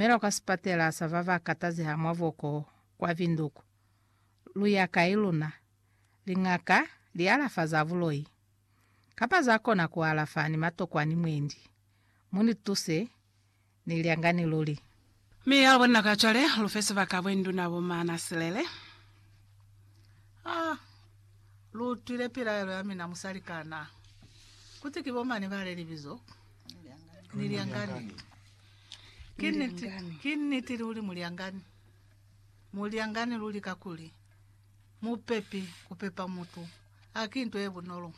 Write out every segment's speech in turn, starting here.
Mela kwa sipatela sa ba ba katazeha mwa boko kwa Windhoek. Lu ya kai luna? Liñaka li alafa za buloi, kapa za kona ku alafa ni matokwani mwendi? Mu ni tuse, ni lyangani luli. Mi ya bona ka cwale, lu fe sibaka bwe nduna bo mana silele. Ah, lu utwile pilaelo ya mina musali kana? Kuti ki bo mani ba le libizo, ni lyangani. Ki niti, ki niti luli mulyangani. Mulyangani luli kakuli mupepi kupepa mutu haki nto ye bunolo.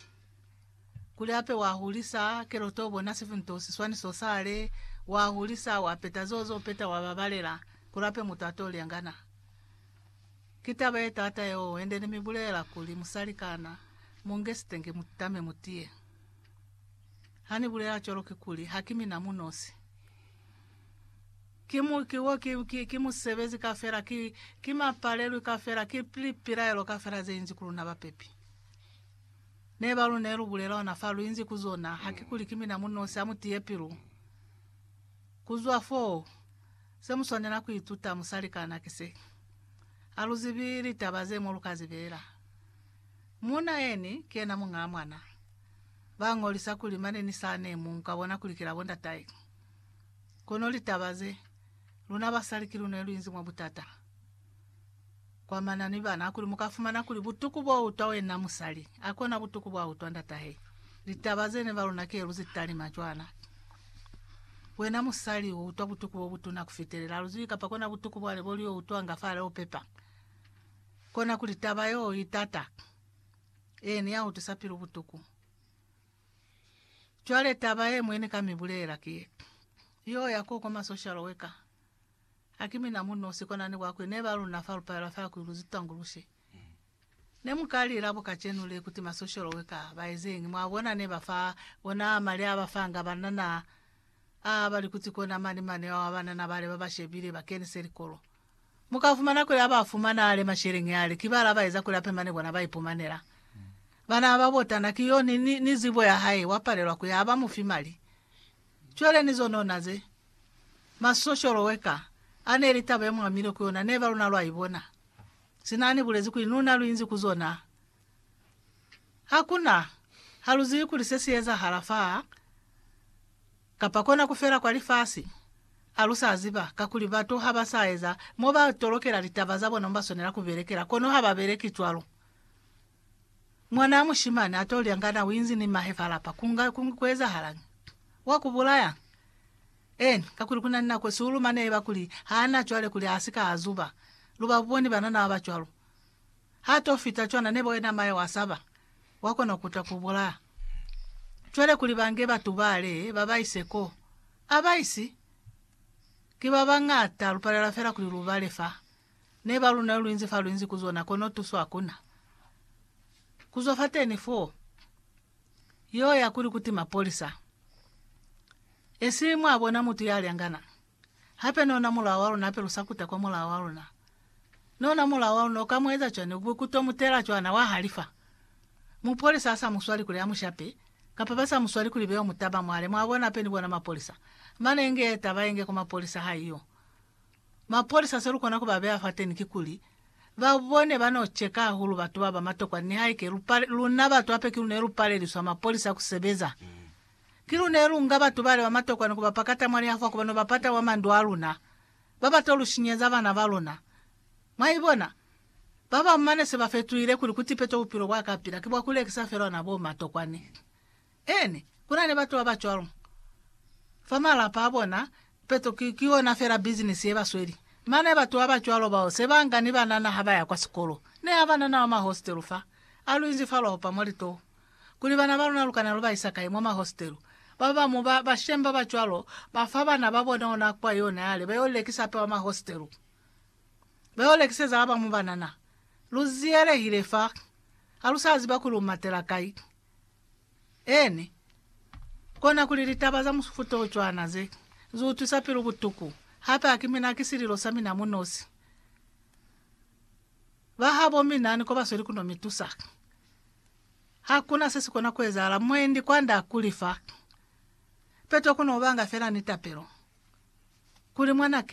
Kuli hape wa hulisa kelo to bona sifi nto siswani so sale, wa hulisa wa peta zo zo peta wa babalela kuli hape mutu ato lyangana. Ki taba ye taata yeo hende ni mi bulela kuli musalikana munge sitenge mutame mutiye. Ha ni bulela cwalo kikuli ha ki mina mu nosi. Ki mu, ki wo, ki, ki, ki musebezi kafela, ki, ki mapalelwi kafela, ki lipilaelo kafela ze inzi ku luna bapepi. Ne ba lu ne lu bulela ona fa lu inzi ku zona, ha ki kuli ki mina mu nosi, ha mu tiye pilu. Ku zwa foo, se mu swanela ku ituta, musalikana, ki se. Ha lu zibi litaba ze mo lu ka zibela. Muuna yeni, ki yena muñaa mwana. ba ngolisa kuli mane ni sa ne mu ka bona kuli ki la bo ndatae. Kono litaba ze, luna basali ki lune lu inzi mwa butata kwa mana ni bana hakuli mu ka fumana kuli butuku bo utwa wena musali a kona butuku bwa utwa ndatahe. Litaba ze ne ba luna ki lu zi talima cwana. Wena musali u utwa butuku bo butuna ku fitelela lu zibi kapa kona butuku bwale bo lio utwanga fa leo pepa. Kona kuli taba yeo i tata. Ee, ni ya utwisa pilu butuku. Cwale taba ye mwe ni ka mi bulelela ki ye, Yo ya koko ma social worker, ha ki mina mu nosi kona ni kwakwi, ne ba luna fa lu paelwa fela kuli lu zitanguluse. Ne mu ka lila bo kacenu le kuti ma social worker ba ezeñi, mwa bona, ne ba fa ona mali a ba fanga banana aa, ba li kuti kona mali mane ao a banana bale ba ba shebile ba kenise likolo. Mu ka fumana kuli ha ba fumana ale masheleñi ale, ki bala ba eza kuli a pemane kona ba ipumanela. Bana ba ba botana ki yo ni, ni, ni zibo ya hae, wa palelwa ku ya, ha ba mu fi mali. Cwale ni zonona ze. Ma social worker, a ne li taba ye mu amilwe ku yona, neba luna lwa ibona. Sina a ni bulezi kuli, Luna lu inzi ku zona. Hakuna. Ha lu zibi kuli se si ezahala fa. Kapa kona ku fela kwa lifasi? A lu sa ziba? Kakuli batu ha ba sa eza mo ba tolokela litaba za bona mo ba swanela ku belekela, kono ha ba beleki cwalo. Mwanaa mushimani a t'o lya nga na u inzi ni mahe fa lapa, ku nga ku, ku ezahalañi? Wa ku bulaya? Eeni, kakuli ku na ni nako, siuluma ne ba kuli, Ha na cwale kuli a si ka a zuba. Lu ba boni banana ba ba cwalo? Ha to fita cwana neba wena mayo wa saba, wa kona kuta ku bulaa. Cwale kuli ba nge batu bale ba ba ise ko, a ba isi. Ki ba bañata, lu palela fela kuli lu bale fa. Ne ba luna lu inzi fa lu inzi ku zona, kono tuso hakuna. Ku zwa fateni foo, yo ya kuli kuti mapolisa. Esi mwa bona mutu ya lyangana. Hape ni ona mulao wa luna hape lu sa kuta kwa mulao wa luna. Ni ona mulao wa luna u ka mu eza cwani ku ku to mu tela cwana wa halifa? Mupolisa ha sa mu swali kuli a mu shape, kapa ba sa mu swali kuli beo mutaba mwale mwa bona hape ni bona mapolisa, mane inge ye taba inge kwa mapolisa ha iyo. Mapolisa se lu kona ku ba beya fateni ki kuli, ba bone ba no cheka hahulu batu ba ba matokwa nihaike lu pale, luna batu hape ki luna ye lu paleliswa mapolisa ku sebeza. Ki lu ne lu nga batu bale ba matokwa ni ku ba pakata mwa lihafwa ku ba no ba pata mwa mandu a luna, ba ba to lu shinyeza bana ba luna. Mwa ibona? Ba bañwi mane se ba fetuhile kuli ku tipeto bupilo bwa ka pila ki bwa ku lekisa fela ona bo matokwa ni. Eeni, ku na ni batu ba ba cwalo. Fa malapa a bona, tipeto ki, ki yona fela bizinisi ye ba sweli. Mane batu ba ba cwalo bao se ba nga ni banana ha ba ya kwa sikolo. Ne ha ba na na wa mahostelu fa, a lu inzifalwa ho pa mwa litoho. kuli bana ba luna lu kana lu ba isa kai mwa mahostelu. Ba ba bamu ba bashemi ba ba cwalo ba fa bana ba bona ona kwa yona yale ba yo lekisa hape mwa mahostelu. Ba yo lekiseza ba bamu banana. Lu ziyelehile fa. Ha lu sa ziba kuli u matela kai. Eeni. Kona kuli litaba za mufuta o cwana ze, zu utwisa pilu butuku. Hape ha ki mina, ki sililo sa mina mu nosi. Ba habo mi nani ko ba sweli ku no mi tusa. Ha ku na se si kona ku ezahala, mwendi kwand'a kuli fa peto ku no banga fela ni tapelo kuli mwanake